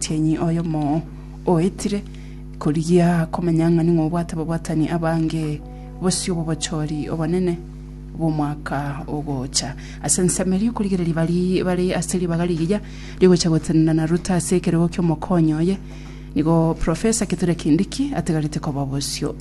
Omotienyi oyomo oetire korigia komanya ng'a ning'o obwate ababwatani abange bosio b'obochori obonene bw'omwaka ogocha. Ase ensemo eria okorigereria baria bare ase ribaga rigiya rigocha gotenena na Ruto ase ekerego ki'omokonyi oye, nigo Professor Kithure Kindiki atigarete koba bosio.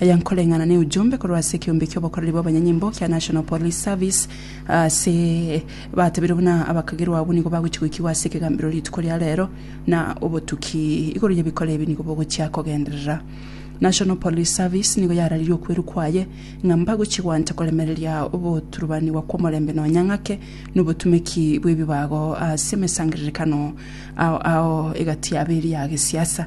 Aya nkoreng'ana ne ujumbe korwa ase ekeombe ki'obokoreri bw'abanyanyimbo kia National Police Service ase batebeirwe buna abakagerwa abwo nigo bagochi goikigwa ase ekegambero rituko ria rero na obotuki igoro y'ebikora ebi nigo bogochia kogenderera National Police Service nigo yararirie okwerwa kwaye ng'a mbagochi gwanta koremereria ogoturubanigwa kw'omorembe nonya ng'ake nobotumeki bw'ebibago ase emesangererekano ao ao egati yabo eria ya gesiasa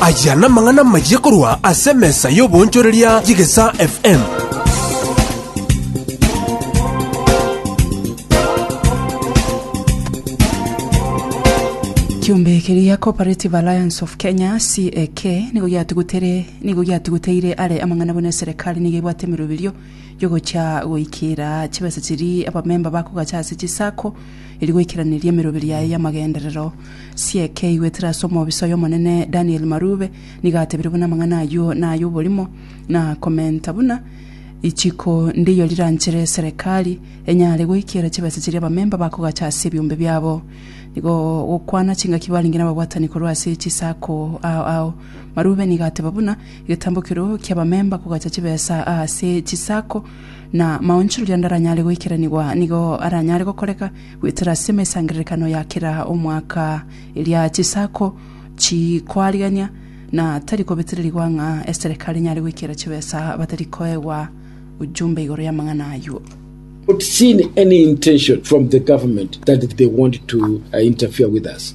Aya namang'ana amayia korwa ase emesa y'oboonchoreria y'Egesaa FM. Kiombe keria Cooperative Alliance of Kenya CAK nigo giatugutere nigo giatuguteire are amang'ana buna eserekari nigo ebwate emeroberio yogocha goikera chibesa chiri abamemba bakogacha ase chisako eri goikeraneria emeroberi yaye y'amagenderero. Sieke igwetire ase omobisa oy'Omonene Daniel Marube, nigo atebire buna amang'ana ayio nay'oborimo na komenta buna ichiko ndiyo riranchere serekari enyare goikera chibesa chiria abamemba bakogacha ase ebiombe biabo. Nigo gokwana chingaki barenge nababwatani korwa ase chisako ao ao. Marube nigo ateba buna egetambo ekeroo ki'abamemba kogacha chibesa ase chisako na amaonchoreria ande aranyare goikeranigwa nigo aranyare gokoreka goetera ase emesangererekano ya kera omwaka eria chisaku chikoarigania, na tari kobetererigwa ng'a eserekari enyare goikera chibesa batari koegwa ujumbe igoro y'amang'ana ayio. not seen any intention from the government that they want to uh, interfere with us.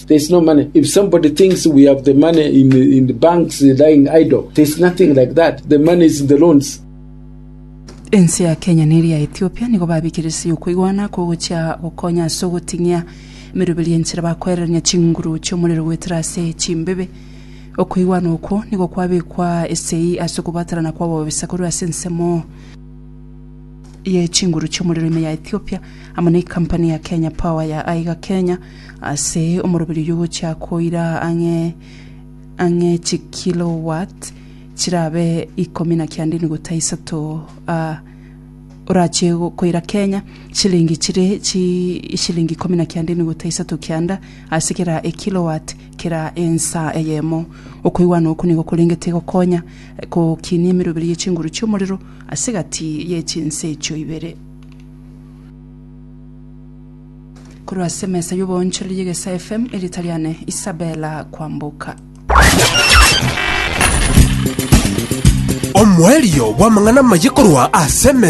There's no money. If somebody thinks we have the money in the, in the banks lying idle, there's nothing like that. The money is in the loans. Ense ya Kenya neri ya Ethiopia nigo babikeresirie okoigwana oko gochia gokonya ase ogoting'ia emeruberi enchera bakoererania chinguru chi'omorero goetera ase chimbebe. Okoigwana okwo nigo kwabekwa esegi ase okobwatanana kw'ababisa korwa ase ensemo ye chinguru chi'omorero ime ya Ethiopia amo ne ekampani ya Kenya Power ya aiga Kenya Ase omoroberio y'ogochia koira ang'e ang'e chikilowatt chirabe ikomi na kianda enuguta isato a orache koira Kenya chilingi chire chi ishilingi ikomi na kianda enuguta isato kianda ase kera ekilowatt kera ensa eyemo. Okoigwana oko nigo korengete gokonya gokinia emeroberio ye chinguru chi'omorero ase egati ye chinse echio ibere. Korwa ase emesa y'oboonchoreri y'Egesaa FM, erieta riane Isabella Kwamboka. Omoerio bw'amang'ana amaye korwa ase emesa